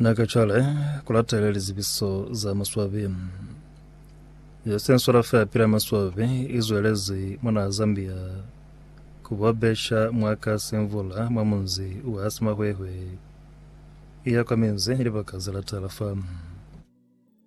Na ka cwale ku latela lizibiso za maswabi. Yosensora fa pila maswabi i zwelezi mona Zambia ku ba besha mwa ka semvula mwa munzi wa Simahwehwe iya kwa minzi libaka za latela fa.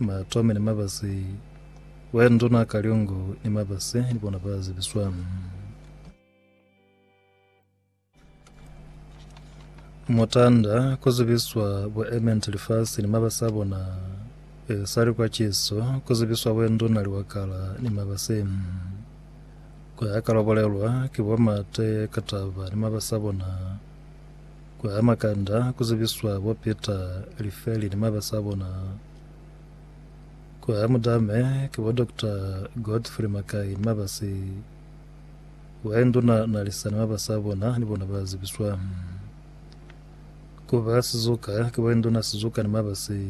Ba tome ni mabasi. Wena nduna Kalyungu ni mabasi ni bona ba zibiswa. Mutanda ku zibiswa bo Ament lifasi ni mabasi a bona. E sali kwa Chiso ku zibiswa we nduna Liwakala ni mabasi. Ku ya ka lwa bolelwa ki bo Mate Kataba ni mabasi a bona. Ku ama kanda ku zibiswa bo peta lifeli ni mabasi a bona. Ku amu dame ki bo Doctor Godfrey Makai ni mabasi. Why nduna na lisa ni mabasi a bona ni bona ba zibiswa. Ku ba sizuka ki why nduna sizuka ni mabasi.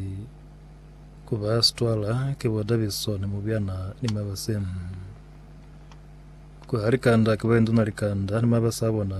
Ku ba stwala ki bo Daviso ni mubyana ni mabasi. Ku ha likanda ki why nduna likanda ni mabasi a bona.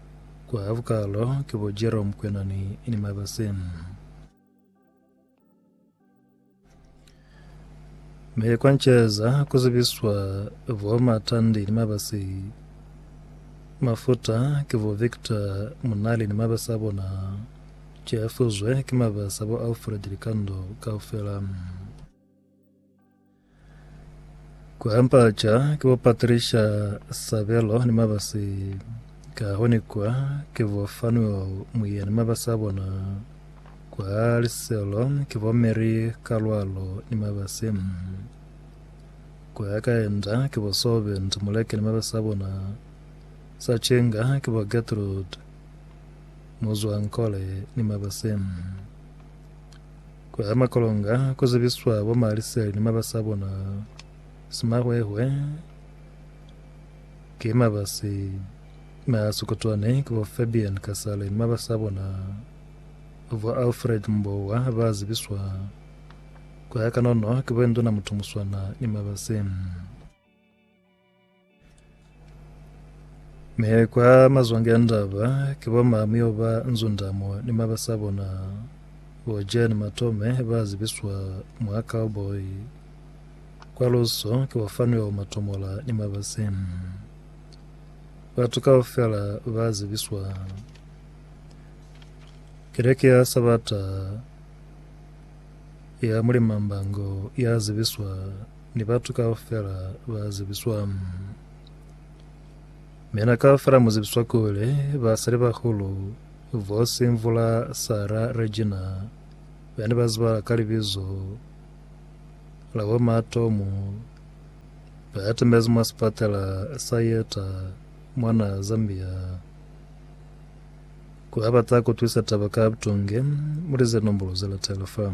Kwa vukalo ki bo Jerome Kwenani ni Mabase. Me kwa Ncheza ku zibiswa bo Matandi ni Mabase. Mafuta ki bo Victor Munali ni mabase a bona. Cefuzwe ki mabase a bo Alfred Likando kaufela. Ku ampaca ke bo Patricia Sabelo ni mabasi ka hone kwa ke bo Fanuel Muyia ni mabasi a bona kwa Liselo ke bo Mary Kalwalo ni mabasi kwa Kaenda ke bo Soben Muleke ni mabasi a bona sa Chenga ke bo Gertrude Muzwankole ni mabasi Kwa makolonga ku zibiswa bo Maliseli ni mabasi a bona. Simahwehwe ki mabasi m'a sikutwane ki bo Fabian Kasale ni mabasi a bona. Bo Alfred Mbowa ba zibiswa kwa kanono ki bo Induna Mutumuswana ni mabasi. Mi kwa mazwange a ndaba, ki bo Mamio ba Nzundamo ni mabasa bona, bo Jan Matome ba zibiswa mwa Cowboy. Kwa luso ki bo Fanuel Matomola ni mabasi. Batu kaufela ba zibiswa. Keleke ya Sabata ya Mulimambango ya zibiswa Ni batu kaufela ba zibiswa. Mina kaufela mu zibiswa kuli basali bahulu, Vosi Mvula, Sara, Regina, be ni ba zibahala ka libizo la bo ma Tomu, ba atamezi mwa sipatela sa Yeta mwana Zambia. Ku ba bata kutwisa taba ka butonge, mulize nombolo ze latela fa.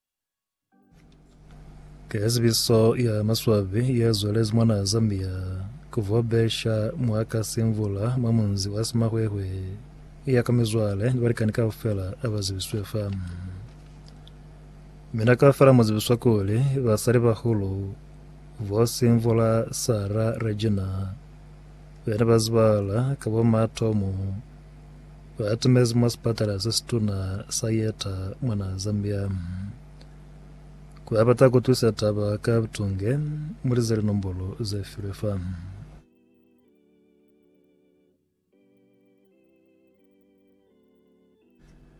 Ke zibiso ya maswabi ya zwalezi mwa naha Zambia ku vobesha mwa ka simvula mwa munzi wa Simahwehwe ya ka mizwale ni balikani kaufela aba zibiswe fa. Mina kaufela mu zibiswa kuli basali bahulu bo simvula Sarah Regina bena ba zibala ka bo matomu Ba atimezi mwa sipatala se situna sa Yeta mwa naha Zambia. Ku ba bata ku twisa taba ka butunge, mulize linombolo ze filwe fa.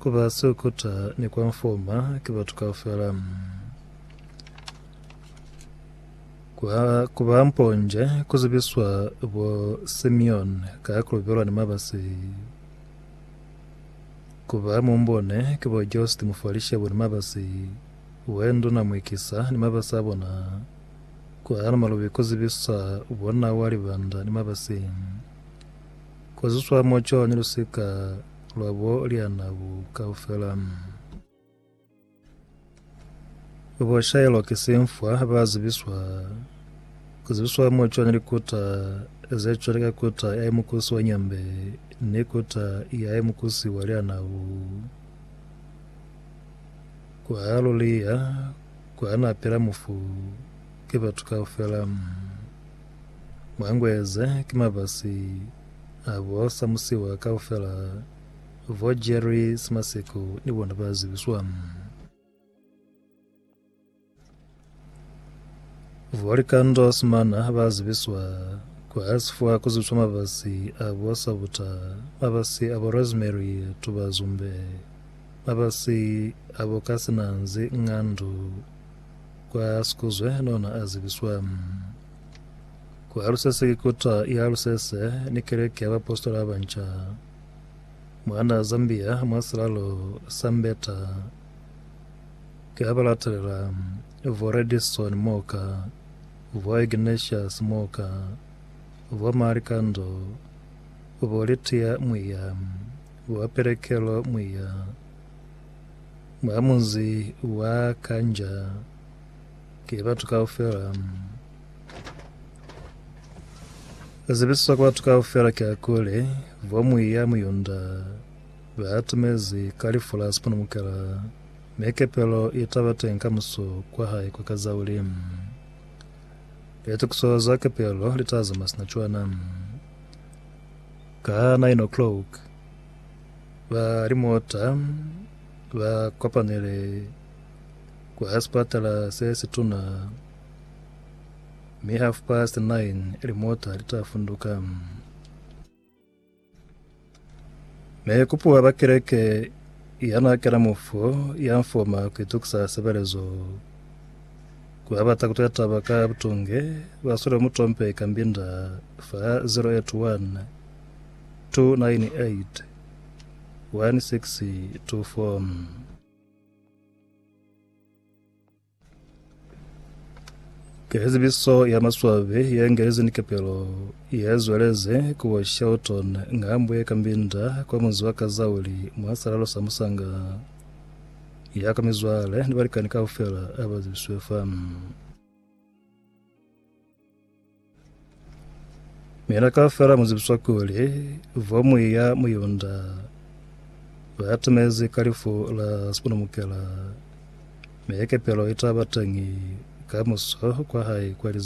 Ku ba sukuta ni kwa mfuma ki batu kaufela. Kwa ku ba mponje ku zibiswa bo Simeon ka kulubelwa ni mabasi. Ku ba mumbone ki bo Jost Mufalishebu ni mabasi, we nduna Mwikisa ni mabasi a bona. Kwa Namalubi ku zibiswa bo Nawa Libanda ni mabasi. Ku zuswa mo co ni lusika lwa bo lyana bu kaufela. Bo shaelwa ki simfwa ba zibiswa zibiswa mo cwani likuta ze cwale ka kuta ya mukusi wa nyambe ni kuta ya mukusi wa lyana bu kwa luliya kwa napela mufu ke batu kaufela. Mwangueze ki mabasi a bo Samusiwa kaufela, bo Jerry Simaseko ni bona ba zibiswa. Bo Likando Simana ba zibiswa kwa sifwa ku zibiswa mabasi a bo Sabuta, mabasi a bo Rosemary Tubazumbe, mabasi a bo Kasinanzi Ngandu, Kwa Sikuzwe nona a zibiswa kwa Alusese ki kota ya Alusese ni Keleke ya Baapositola ba Banca. Mwana Zambia mwa silalo sa Mbeta ki ha ba latelela Vo Redison Moka, Vo Ignatius Moka, Vo Malikando, Vo Litia Mwiya, Vo Pelekelo Mwiya, Mwa munzi wa Kanja ki batu kaufela. Ku zibisiswa kwa batu kaufela kiakuli, vo muiya Muyunda ba atumezi ka lifu la sipunumukela, mi kepelo i taba teñi ka muso kwa hae kwa Kazauli. Litokiso za kepelo li ta zamaya sina cwana ka nine o'clock. Ba limota ba kopanile kwa sipatala se situna mi half past nine limota li ta funduka. Me kupuwa ba kereke yana kena mufu ya mfoma ku itukisa sebelezo kwa bata kutwela taba ka butunge baswele mutompe kambinda fa 081 Ke zibiso ya maswabi ye ngelezi ni kepelo ye zwelezi ku bo Shelton ngambo ye ka Mbinda kwa munzi wa Kazauli mwa salalo sa Musanga ya kwa mizwale ni balikani kaufela a ba zibiswe fa. Mina kaufela mu zibiswa kuli vomuyi ya Muyunda ba timezi ka lifu la sipunumukela, mi kepelo i taba teñi kamuso kwa hae kwa lizazi.